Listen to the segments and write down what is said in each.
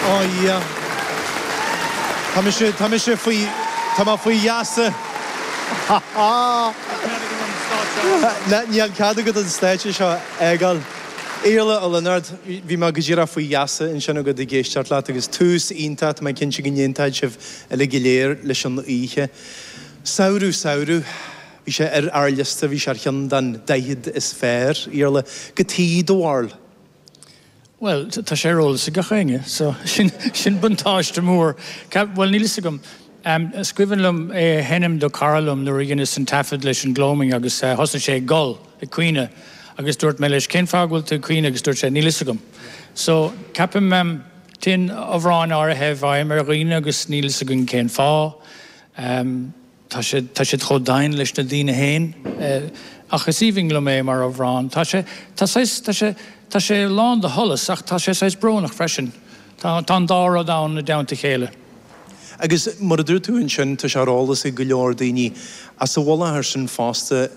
Ó a Dhia. Tá mise, tá mise faoi, tá mé faoi gheasa. Ha ha! Níl cead agat an stáitse seo a fhágáil. Iarla Ó Lionáird, Bhí mé go díreach faoi gheasa ansin agat ag éisteacht leat agus tús iontach, tá mé cinnte go n-aontóidh sibh uilig go léir leis an oíche. Samhradh, samhradh. Bhí sé ar ár liosta, bhí sé ar cheann den 40 is fearr. Iarla, goidé do bharúil. Bhuel, tá sé ar eolas ag gach éinne, so sin buntáiste mór. Bhuel, níl 'fhios agam. Is cuimhin liom é a sheinm do chara liom nuair a dheineas an taifead leis an Gloaming agus thosnaigh sé ag gol, ag caoineadh, agus dúirt mé leis cén fáth go bhfuil tú ag caoineadh agus dúirt sé níl 'fhios agam. So, ceapaim, téann amhráin áirithe i bhfeidhm ar dhaoine agus níl 'fhios againn cén fáth. Tá siad chomh domhain leis na daoine féin. Ach is aoibhinn liom é mar amhrán. Tá sé, tá saghas, tá sé, tá sé lán de sholas ach tá sé saghas brónach freisin. Tá, tá an dá rud ann i dteannta a chéile. Agus mar a dúirt tú ansin, tá sé ar eolas ag go leor daoine as a bhfuil i láthair ansin fosta.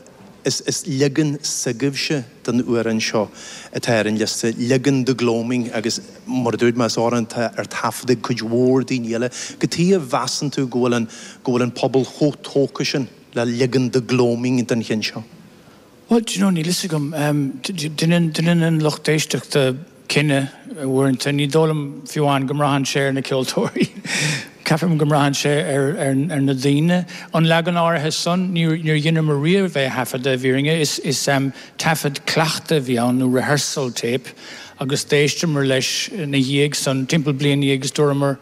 Is leagan s'agaibhse den amhrán seo atá ar an liosta, leagan The Gloaming agus, mar a dúirt mé, is amhrán atá ar taifead ag cuid mhór daoine eile. Goidé a mheasann tú go bhfuil an, go bhfuil an pobal chomh tógtha sin le leagan The Gloaming den cheann seo? Bhuel, do you know, níl 'fhios agam. Deineann an lucht éisteachta. cinneadh, uaireanta. Ní dóigh liom fiú amháin go mbraitheann sé ar na ceoltóirí. Ceapaim go mbraitheann sé ar na daoine. An leagan áirithe san, níor dheineamar riamh é a thaifeadadh, i bhfírinne. Is taifead cleachta a bhí ann, nó rehearsal tape, agus d'éisteamar leis ina dhiaidh san, timpeall bliain ina dhiaidh, agus dúramar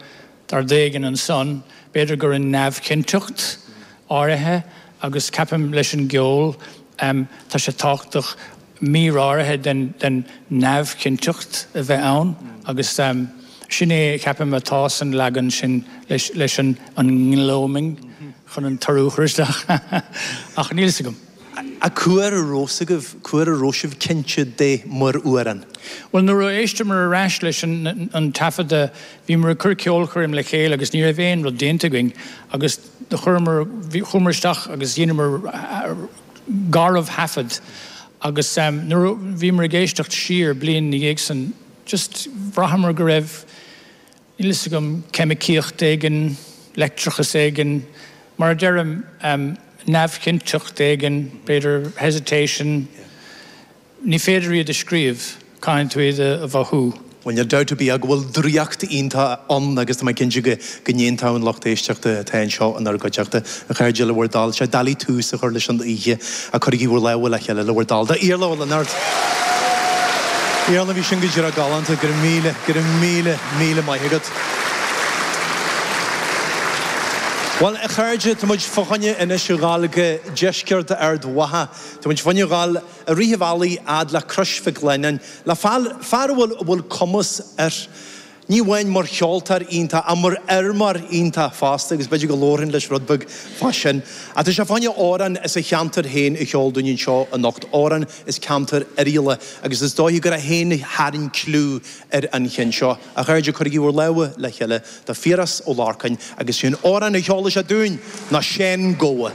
tá rud éigin ansan, b'fhéidir gur fhan neamhchinnteacht áirithe, agus ceapaim leis an gceol, tá sé tábhachtach, mír áirithe den neamhchinnteacht a bheith ann agus sin é, ceapaim, atá san leagan sin leis an nGloaming chun an t-urú a chur isteach ach níl 's agam. Ach cá huair a raibh 's agaibh, cá huair a raibh sibh cinnte de mar amhrán? Bhuel, nuair a d'éisteamar ar ais leis an taifeadadh bhíomar ag cur ceolchoirm le chéile agus ní raibh aon rud déanta againn agus chuireamar, chuamar isteach agus dheineamar, garbhthaifead agus nuair a bhíomar ag éisteacht siar bliain ina dhiaidh san just bhraitheamar go raibh, níl 'fhios agam, ceimicíocht éigin, leictreachas éigin, mar a deirim, neamhchinnteacht éigin, b'fhéidir hesitation, Ní féidir iad a scríobh, caithfidh tú iad a mhothú. Bhuel, níl dabht ar bith agam go bhfuil draíocht iontach ann agus tá mé cinnte go ndéanfadh an lucht éisteachta atá anseo inár gcuideachta, a chairde, le bhur dtoil. Sé an dóigh le tús a chur leis an oíche, cuirigí bhur lámha le chéile le bhur dtoil do Iarla Ó Lionáird! Iarla, bhí sin go díreach galánta, go raibh míle, go raibh míle, míle maith agat. Bhuel, a chairde, tá muid fá choinne anois a ghabháil go Deisceart Ard Mhacha. Tá muid fá choinne a ghabháil. a rith an bhealaigh a fhad le Crois Mhic Lionnáin, le fear, fear a bhfuil, a bhfuil cumas air, ní amháin mar cheoltóir iontach, ach mar fheirmeoir iontach fosta, agus b'fhéidir go labharfainn leis rud beag fá sin. Ach tá sé fá choinne amhrán as a cheantar féin a cheol dúinn anseo anocht, amhrán as ceantar Oirialla, agus is dóiche gur é féin a tharraing cliú ar an cheann seo. A chairde, cuirigí bhur lámha le chéile do Phiaras Ó Lorcáin, agus sé an t-amhrán a cheolfas sé dúinn ná Seán Gabha.